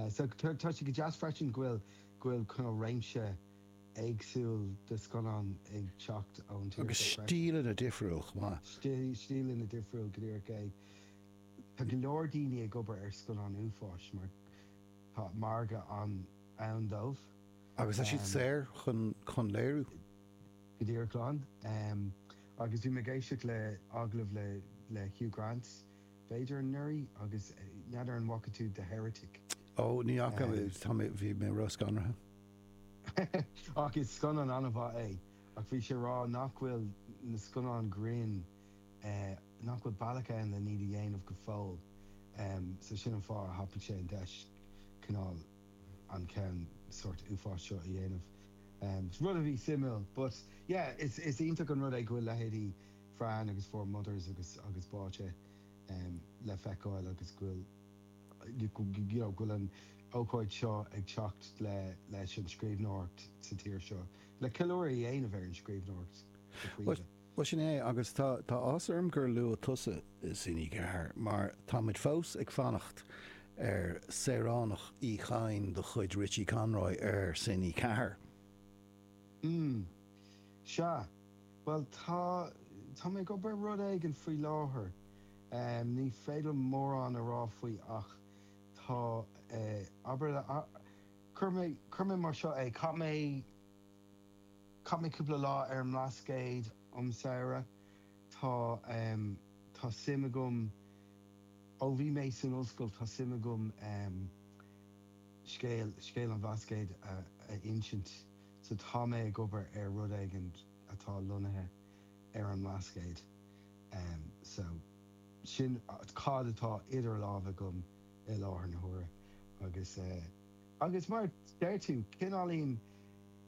Sea, tá sé go deas freisin go bhfuil réimse éagsúil de scannáin ag teacht ón tír seo freisin. Agus stíleanna difriúla chomh maith. Stíleanna difriúla, go díreach é. Tá go leor daoine ag obair ar scannáin uafáis mar tá margadh ann dóibh. Agus tá siad saor chun léiriú. Go díreach, agus bhí mé ag éisteacht le hagallamh le Hugh Grant B'fhéidir anuraidh agus n'fheadar an bhfaca tú The Heretic? Ó, ní fhaca, tá mé, bhí mé róscanraithe. Ach is scannán an-mhaith é. Ach bhí sé a rá nach bhfuil na scannáin ghrinn, nach bhfuil bealach ann lena iad a dhéanamh go fóill so sin an fáth a thapaigh sé an deis cineál an ceann sórt uafáis seo a dhéanamh. Rud a bhí suimiúil but yeah is iontach an rud é go bhfuil leithéidí Fran agus Four Mothers agus agus Báite le feiceáil agus go bhfuil you know go bhfuil an ócáid seo ag teacht le leis an scríbhneoireacht sa tír seo, le ceiliúradh a dhéanamh ar an scríbhneoireacht go príomha. Bhuel, sin é, agus tá tá áthas orm gur luaigh tusa Cine4, mar tá muid fós ag fanacht ar Saoránach Uí Chadhain de chuid Richie Conroy ar Cine4. Mm. Sea. Bhuel, tá, tá mé ag obair ar rud éigin faoi láthair. Ní féidir liom mórán a rá faoi ach tá, abair, cuirfidh mé, cuirfidh mé mar seo é, chaith mé, chaith mé cúpla lá ar an mBlascaod um samhradh. Tá, tá suim agam, ó bhí mé san ollscoil, tá suim agam scéal, scéal an Bhlascaoid a insint. So, tá mé ag obair ar rud éigin atá lonnaithe ar an mBlascaod. So, sin cad atá idir lámha agam i láthair na huaire. Agus, agus mar a deir tú, cineáilín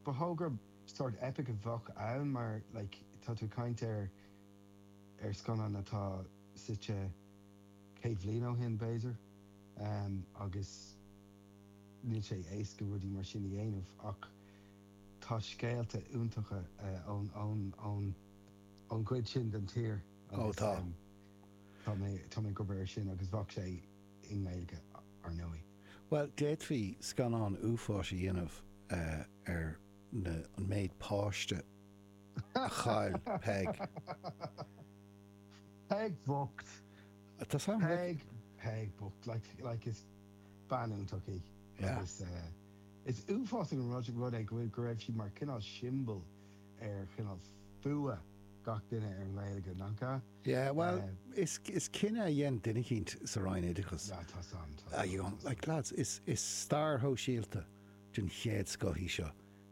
ba thogra sórt eipic a bheadh ann mar, like, tá tú ag caint ar, ar scannán atá suite céad bliain ó shin, b'fhéidir, agus. Níl sé éasca rudaí mar sin a dhéanamh ach tá scéalta iontacha ón gcuid sin den tír agus tá mé ag obair air sin agus bheadh sé i nGaeilge, ar ndóigh. Bhuel, d'fhéadfaí scannán uafáis a dhéanamh ar an méid páiste a chaill Peig. Peig bhocht! Tá sin ag. Peig, Peig bhocht. Like, is. bean iontach í agus is uafásach an rud é go raibh sí mar chineál siombail ar chineál fuath gach duine ar an nGaeilge, nach ea? Yeah, bhuel, is cinneadh a dhein duine eicínt sa Roinn Oideachais. Yeah, tá san, tá san, tá san. Like lads, is stair shóisialta den chéad scoth í seo.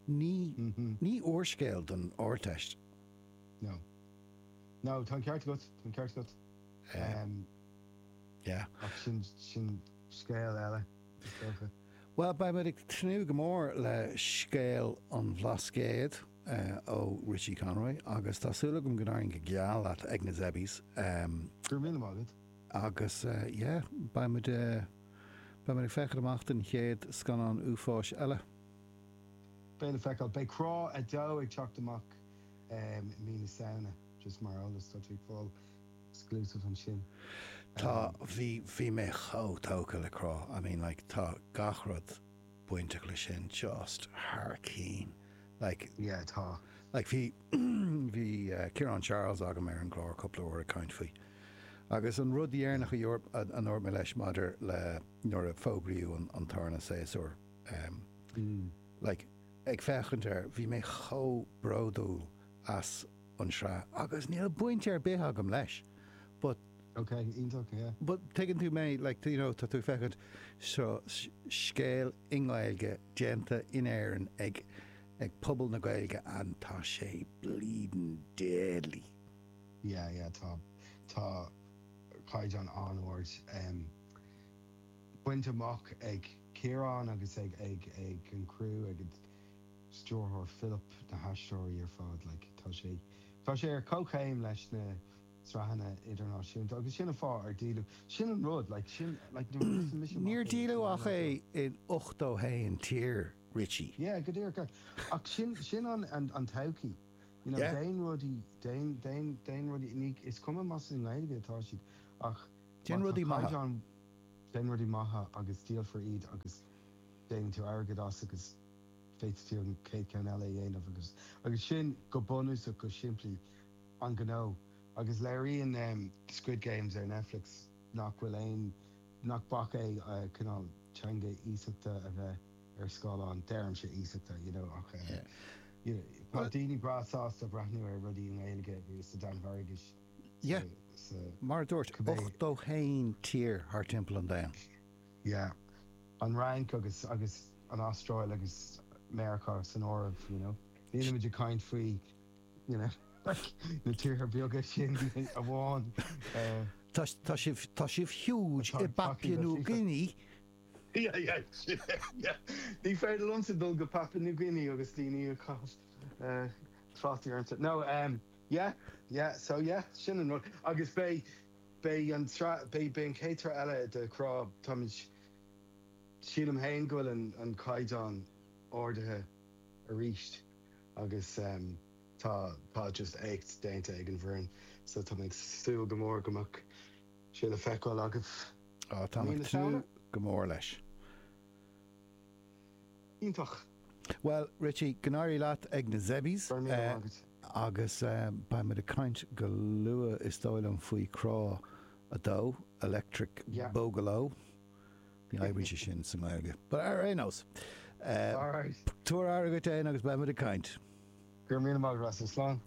Ní, ní húrscéal don Ardteist. No. No, tá an ceart agat, tá an ceart agat. Yeah. Ach sin, sin scéal eile, is dócha. Bhuel, beidh muid ag tnúth go mór le scéal an Bhlascaoid ó Richie Conroy agus tá súil agam go n-éiríonn go geal leat ag na Zebbies. Go raibh míle maith agat. Agus, yeah, beidh muid, beidh muid ag féachaint amach don chéad scannán uafáis eile. Beidh le feiceáil. Beidh Crá 2 ag teacht amach i mí na Samhna, just mar eolas, tá tú ag fáil exclusive ansin. Tá, bhí, bhí mé chomh tógtha le Crá, I mean like tá gach rud bainteach leis sin just thar cinn, like, yeah, tá, like bhí, bhí Ciarán Charles agam ar an gclár cúpla uair ag caint faoi agus an rud dheireanach a ndúirt mé leis maidir le nuair a fógraíodh an tarna séasúr, like ag féachaint air, bhí mé chomh bródúil as. an sraith agus níl baint ar bith agam leis but ok iontach yeah but tuigeann tú mé like you know tá tú ag féachaint seo scéal i nGaeilge déanta in Éirinn ag ag pobal na Gaeilge and tá sé bleeding deadly yeah yeah tá tá caighdeán an-ard um bainte amach ag Ciarán agus ag ag ag an criú ag stiúrthóir Philip na haisteoirí ar fad. Like tá sé, tá sé ar comhchéim leis na sraitheanna idirnáisiúnta agus sin an fáth ar díoladh, sin an rud, like sin, like nuair a thosaigh mise amach in Toronto Níor díoladh ach é in ochtó haon tír, Richie. Yeah, go díreach. Ach sin, sin an, an, an todhchaí. You know, Yeah. déan rudaí, déan, déan, déan rudaí, ní, is cuma más i nGaeilge atá siad ach má tá caighdeán, Déan rudaí maithe, déan rudaí maithe agus díolfar iad agus déanann tú airgead as agus Féadfaidh tú an chéad cheann eile a dhéanamh agus agus sin, go bunúsach, go simplí, an gnó. Agus léiríonn Squid Games ar Netflix nach bhfuil aon, nach bac é cineál teanga iasachta a bheith ar scáileán, deirimse iasachta, you know ach you know tá daoine breá sásta breathnú ar rudaí i nGaeilge agus sa Danmhairgis sa, sa, cibé. Mar a dúirt, 81 tír thar timpeall an domhain. yeah. An Fhrainc agus agus an Astráil agus Meiriceá san áireamh, you know. Nílimid ag caint faoi, you know, like, na tíortha beaga sin amháin. Eh. Tá tá sibh huge i bPapua New Guinea. Yeah, yeah, yeah. Ní féidir liomsa dul go Papua New Guinea agus daoine ag caitheamh eh trácht ormsa. No, em, yeah, yeah, so yeah, sin an rud. Agus beidh. Beidh an tsraith, beidh an chéad tsraith eile de Crá, táimid, sílim féin go bhfuil an caighdeán ardaithe arís agus tá, tá just éacht déanta ag an bhfoireann so táimid ag súil go mór go mbeidh sé le feiceáil agaibh mí na Samhna. Á, tá mé ag tnúth go mór leis. Iontach! Bhuel, Richie, go n-éirí leat ag na Zebbies. Go raibh míle maith agat. Agus beidh muid ag caint go luath, is dóigh liom, faoi Crá 2, Electric Boogaloo. Ní éiríonn sé sin sa nGaeilge. But ar aon nós, tabhair aire dhuit fhéin agus beidh muid ag caint. Go raibh míle maith agat, Russell. Slán.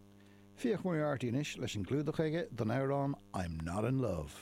Fiach Moriarty anois leis an gclúdach aige don amhrán 'I'm Not In Love'.